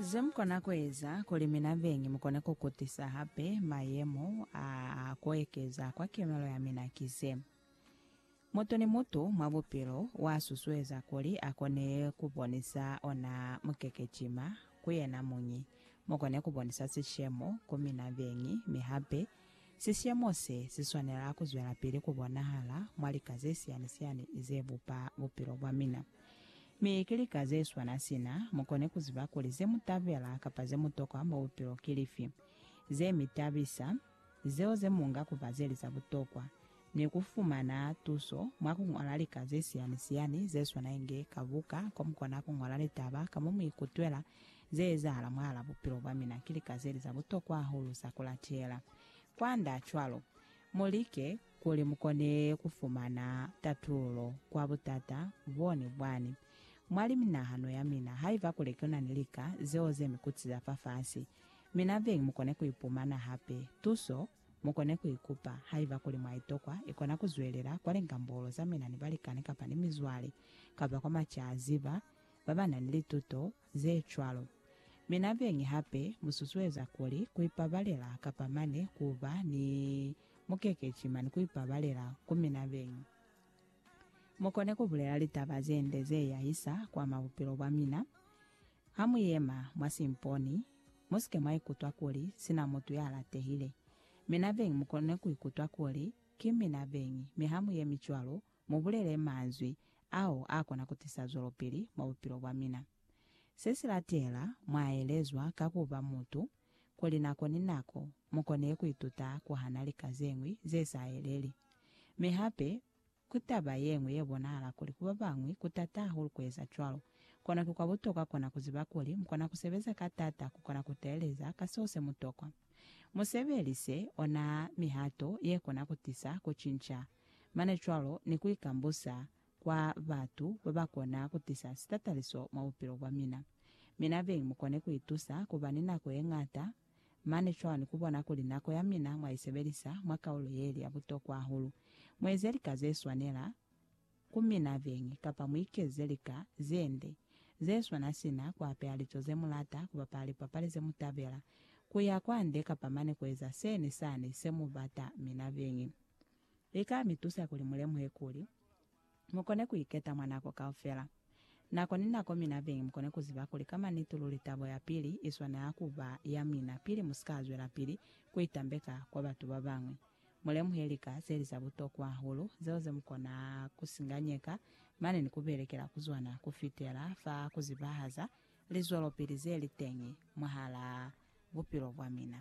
Zemukona kueza kuli mina beñi mukone kukutisa hape mayemo a kuekeza kwa kemelo yamina ki ze, Mutu ni mutu mwa bupilo uasusueza kuli akone kubonisa ona mukekecima ku yena muñi. Mukone kubonisa sishemo ku mina beñi mi hape Sisiyemo se si swanela ku zwelapili ku bonahala mwa lika ze siyani-siyani ze bupa bupilo bwa mina. Mi ki lika ze swana sina mu koni ku ziba kuli ze mu tabela kapa ze mu tokwa mwa bupilo ki lifi, ze mi tabisa, zeo ze mu nga ku ba ze li za butokwa, ni ku fumana tuso mwa ku ñola lika ze siyani-siyani ze swana inge ka buka ko mu kona ku ñola litaba ka mo mu ikutwela ze ezahala mwahal'a bupilo bwa mina ki lika ze li za butokwa hahulu za ku latela. Kwand'a cwalo, mu like kuli mu kone ku fumana tatululo kwa butata bo ni bwani mwa liminahano ya mina. Haiba kuli ku na ni lika zeo ze mi kutiza fafasi, mina beñi mu kone ku ipumana hape tuso. Mukone kuikupa, haiba kuli mwaitokwa, ikona kuzwelela kwa lingambolo za mina ni balikani kapa ni mizwale, kapa kwa macaziba babanani lituto zecwalo. Mi nabeñi hape, mususueza kuli kuipabalela kapa mane kuba ni mukekeci mane kuipabalela ku mina beñi. Mukone kubulela litaba zende zeyahisa kwa mabupilo bwamina, hamuyema mwa simponi, Musike mwa ikutwa kuli sina mutu ya latehile. Mina beñi mukone ku ikutwa kuli ki mina beñi, mi ha mu yemi cwalo, mu bulele manzwi ao a kona ku tisa zwelopili mwa bupilo bwa mina. Se si latela mwa elezwa ka ku ba mutu, kuli nako ni nako mu kone ku ituta ku hana lika ze ñwi ze sa eleli, mi hape, Ku taba ye ñwi ye bonahala kuli ku ba bañwi ku t'ata hahulu ku eza cwalo. Kono ki kwa butokwa kona ku ziba kuli mu kona ku sebeza ka t'ata ku kona ku teeleza ka seo se mu tokwa. Mu sebelise ona mihato ye kona ku tisa ku cinca, mane cwalo ni ku ikambusa kwa batu ba ba kona ku tisa sitataliso mwa bupilo bwa mina. Mina beñi mu kone ku itusa ku ba ni nako ye ñata Mane cwani kubona kuli nako ya mina mwaisebelisa mwa kaulo yeli ya butokwa hahulu? Mueze lika zeswanela ku mina beñi, kapa muikeze lika zende zeswana sina kuapeha lico zemulata, kubapala lipapali zemutabela, kuya kwande, kapa mane kueza se ni sani semubata mina beñi. Lika mitusa kuli mulemuhe kuli. mukone kuiketa mwa nako kaufela. Nako ni nako mina beñi mukone kuziba kuli ka manitu luli tabo ya pili i swanela ku ba ya mina pili mu si ka zwelapili ku itambeka kwa batu ba bañwi. Mu lemuhe lika ze li za butokwa hahulu zeo ze mu kona ku singanyeka mane ni ku belekela ku zona ku fitela fa ku zibahaza lizwelopili ze li teñi mwahalaa bupilo bwa mina.